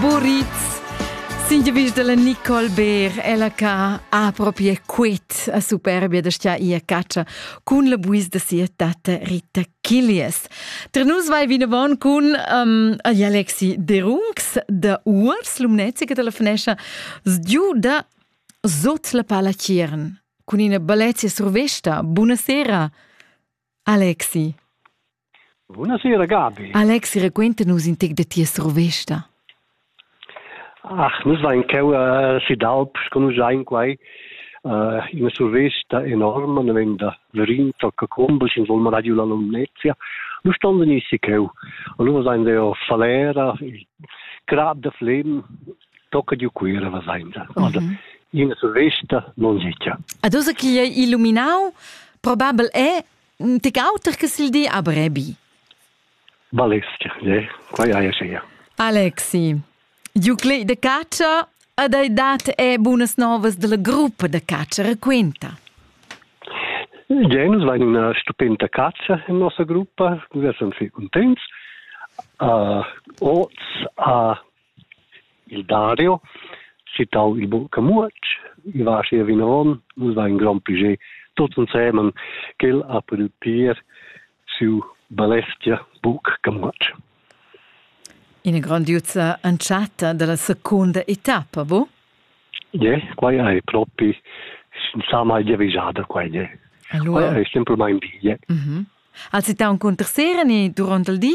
Boritz. Singevis della Nicole Beer, ella ca ha proprio quit a superbia da stia ia caccia cun la buis da sia tata Rita Killias. Tra nus vai vinavon cun um, Alexi Derungs da Uors, l'umnezica della finescia, sgiu da Sot la pala Ciern, cun ina balezia survesta. Buonasera, Alexi. Bunasera Gabi. Alex, raquenta nus in tec da tia survesta. Ach, nus vain cheu uh, si d'Alp, sco nus sain quai, uh, ina survesta enorma, ne vegn da Verin, tocca Combus, in volma radio la Lumnezia. Nus stonden issi cheu. Allora sain deo Falera, il crab da Flem, tocca di Cuira, was sain da. Also, mhm. ina survesta non sitia. Ad osa chi è illuminau, probabel è Tge auter che il di a Brebi? Balestg, ne? Quai haja schia. Alexi, Juclei de caccia ed hai dat e bunas novas della gruppa de caccia raquinta. Genus va in una stupenda caccia in nostra gruppa, wir sind wir contents. Uh, oz a Il Dario, citau il buca muotg, va aschia vinavon, nus vein grond plascher tuts ensemen ch'el ha pudü pir siu balestia buc camuotg. Ina grondiuza entschatta dalla secunda etappa, bu? Ie, quai è propi insomma giavischada quai ie. Allora... Quai è semplamain di, ie. Mm -hmm. Als ita un cunter sera ni durant il di?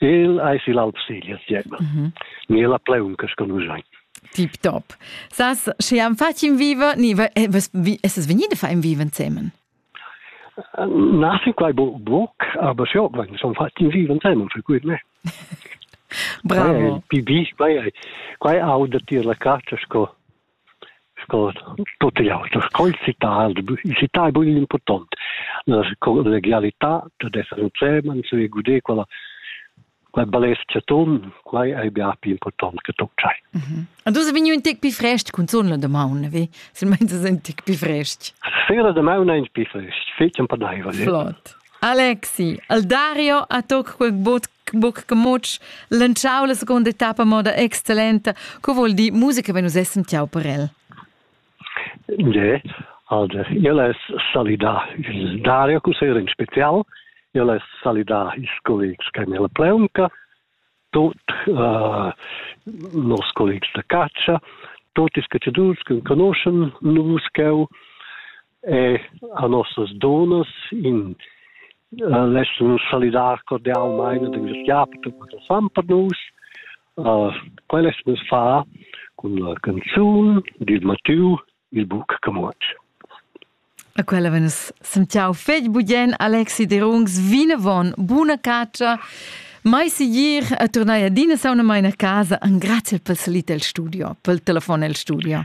El eis igl Alpsilia siema. Mm -hmm. Ni la pleunca sco nus ein. Tip top. Sas, sche am fatg in viva, ni es venida fa in viva insemen? Na, si quai bo boc, aber sio, wenn son fat in viva insemen, für gut me. Bravo. Pi bi, quai quai auda tier la caccia sco Sco tut igl auter sco il sitar il sitar ei buc igl impurtont. La collegialità dad esser in Zemanns e guder quella quella balescha ton, quai ei bia pli impurtont che tut tschai. Mm -hmm. Und du sei vegniu in tec pli frest cunzun la damaun, vi? Silmeins es ein tec pli frest. Sera damaun ein pli frest, fetg empadaivel. Flott. Alexi, al Dario a toc quel bot buc gemutsch lantschau la seconda etappa moda excellenta co vuol dir musica wenn nus essen tiau per el Ne, also il es salidà il Dario Cusseira in spezial, il es salidà ils collegs che nella pleunca, tot uh, nos collegs da caccia, tot is cacciadurs che conoscen nus cheu, e a nossas donas in uh, laschun salidar cordialmein ad ingraziar per tutto fan per nus. Uh, quel es nus fa con la canzun dil Mattiu il buc camot. A quella venes sentiau fetg bugien Alexi Derungs vinavon, buna caccia. Mai sigir a tornai adina sauna mai a casa, an grazie pel salit el studio, pel telefon el studio.